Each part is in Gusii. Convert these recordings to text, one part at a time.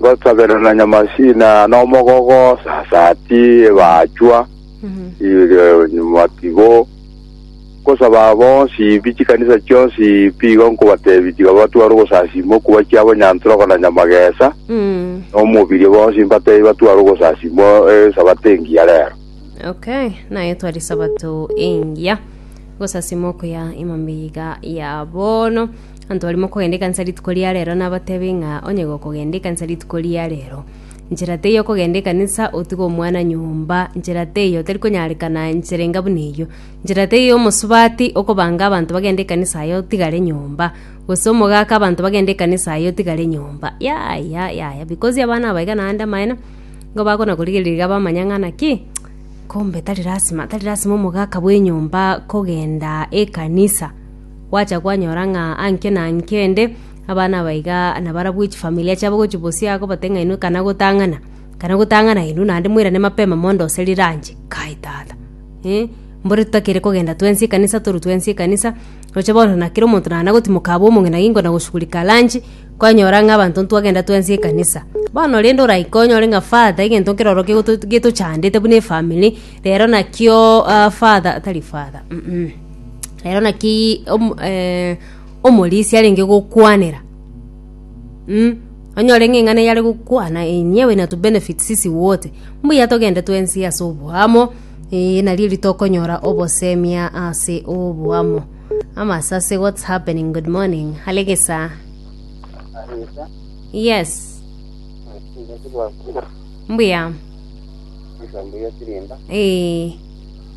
Ngosaberana Nyamasina nomogogo sasati ebachwa iga nyuma tigo nkosaba bonsi bi chikanisa chionsi pi igo nkobatebi tiga batware ogosasima okuba chiabo Nyantoroko na Nyamagesa nomobirio bonsi mbatebi batware ogosasima esabato engiya rero. Okay, naye twari sabato engiya gosasima okuya imambia iga ya bono. Abanto baria mokogenda ekanisa rituko ria reero nabatebe ng'a onye gokogenda ekanisa rituko ria reero, nchera teiyo okogenda ekanisa otige omwana nyomba, nchera teiyo tari konyarekana nchera enga buna eyio. Nchera teiyo omosubati okobanga abanto bagende ekanisa aye otigare nyomba, gose omogaka abanto bagende ekanisa aye otigare nyomba. Yaya yaya because abana aba iga naende amaene, nigo bakona korigereria iga bamanya ng'a naki kumbe tari lasima tari lasima omogaka bw'enyomba kogenda ekanisa. Gwacha kwanyora ng'a anke na anke ende abana abaiga nabarabwo chifamilia chiabo gochia bosio iga kobate ng'a inwe ekana gotang'ana, ekana gotang'ana inwe naende moirane mapema mondo gose riranche. Kai tata eh, mbore totakere kogenda twensi ekanisa torwe twensi ekanisa, roche bono na kera omonto nana gotimoka abwo omong'ina gingo na goshughulika lunch, kwanyora ng'a abanto ntwagenda twensi ekanisa. Bono rende oraike onyore ng'a father egento nkere ororo gegoto getochandete buna efamiri, rero nakio father tari father mmh. rero naki om- eh, omorisia arenge gokwanera mm, onyore ng'a eng'ana eye are gokwana enyewe na tubenefit sisi wote, mbuya togende twensi ase oboamo eh, nari erio tokonyora obosemia ase oboamo. Amasase what's happening, good morning, hare gesaa. Arisa, Yes, nasiba kuba, mbuya, nsambuye sirinda, eh,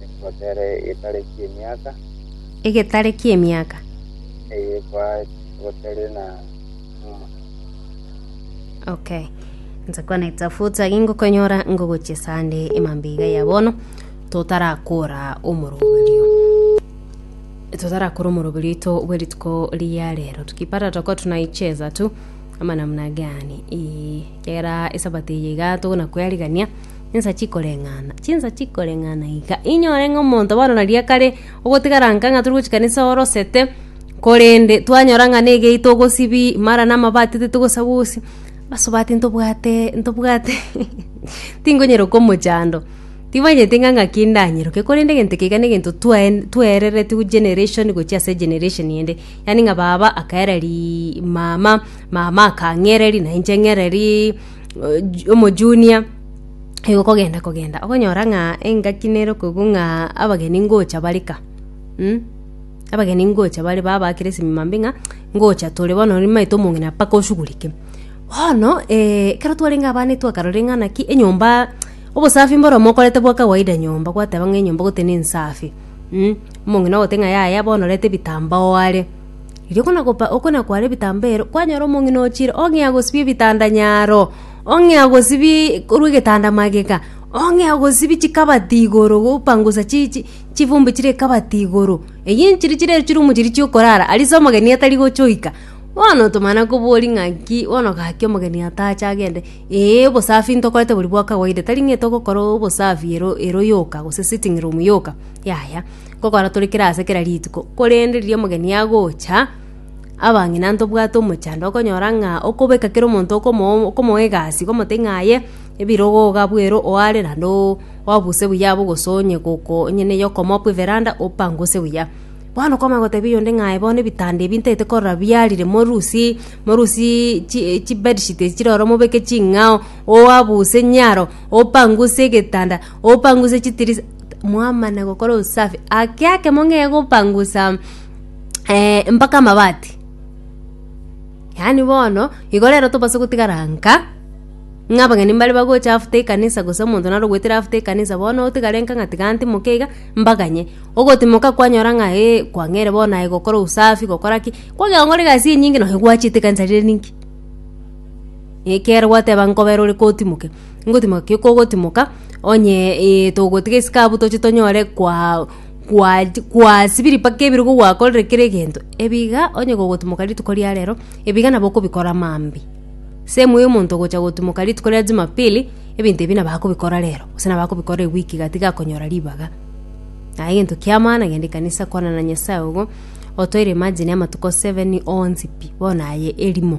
Egotere egetare ki'emiaka. Egetare ki'emiaka. Eye kwa egotere na numa. Okay. Nse kwana itafuta gingokonyora ngogochia sande emambiga ya bono totarakora omoroberio totarakora omoroberio ito bwerituko ria rero tukipata toko tunaicheza tu ama namna gani ee kera esabato eye iga togona kwerigania Insa chikoreng'ana, chinsa chikoreng'ana iga. Inyore ng'a omonto bono na riria kare ogotigara nka ng'a tore gochia kanisa orosete, korende twanyora ng'a na egei togosibi mara na amabati titogosagusi, asubati ntobwate ntobwate tingonyara komochando. Timanyeti ng'a ng'aki ndanyeroke, korende egento eke iga na egento twae twaereretigwe generation gochia ase generation ende. Yaani ng'a baba akaereria mama, mama akang'ereria na inche ng'ererie. omojunia igo kogenda kogenda okonyora ng'a engaki nere okoigwa ng'a abageni ngocha bare ka mm? abageni ngocha bare babakera esimima mbe ng'a ngocha tore bono nimanyete omong'ina mpaka oshugurike. Bono ekero twarenge abana etwakarorire ng'a naki enyomba obosafi mboromo okorete bwa kawaida nyomba gwateba ng'a enyomba goteba nensafi mm? omong'ina ogote ng'a yaya bono reta ebitambaa oare. Erio buna gopa okona kware ebitambeero, kwanyora omong'ina ochire, ong'ea gosibia ebitanda nyaro, ong'ea gosibi korwa egetanda magega, ong'ea gosibi chikabati igoro gopangusa chi chi chifumbe chire ekabati igoro. Eyio nchiria chire echirumu chiria chiokorara, aria ase omogeni atari gocha oika. Bono otomana kobori ng'a nki, bono gaki omogeni atache agende, ee obosafi ntokorete bori bwa kawaida tari ng'a etogokora obosafi ero ero yoka gose sitting room yoka, yaya. gokora tore kera ase kera rituko, korende riria omogeni agocha, abang'ina ntobwate omochando okonyora ng'a okobeka kera omonto okomo okomoa egasi okomotebi ng'a aye ebirogo iga abwo ere oo are naende oo obuse buya abwo gose onye goko onye neye okomoa bwa everanda opanguse buya. Bono kwamanya gotebia oyonde ng'a aye bono ebitanda ebi ntaete korora biarire morusie morusiiii chi chibedsheet echi chire ororo mobeke ching'ao oabuse nyaro opanguse egetanda. Opangusa chitirisa mwamana gokora usafi ake ake mong'ee gopangusa eh, mpaka amabati yaani bono igo rero tobase gotigara nka ng'a abageni mbare bagocha after ekanisa gose omonto naro ogwetire after ekanisa bono otigare nka ng'a tiga ntimoka iga mbaganye ogotimoka kwanyora ng'a eh, kwang'eire bono aye gokora usafi gokora ki kwagenda gokora egasi enyinge nonye gwachete ekanisa rire ninki ekero gwateba nkobera ore kotimoke. Ngotimoka ki kogotimoka, onye eh togotiga esike abwo toche tonyore kwa kwa kwasibiri mpaka ebirogo gwakorire kera egento, ebiga onye gogotimoka rituko ria rero, ebiga nabo okobikora maambia. Same way omonto ogocha gotimoka rituko ria jumapili, ebinto ebi nabo akobikora rero, gose nabo akobikora ewiki iga tiga akonyora ribaga. Aye egento kia maana genda ekanisa kwana na Nyasaye ogo, otoire imagine amatuko seven onsi pi, bono aye erimo.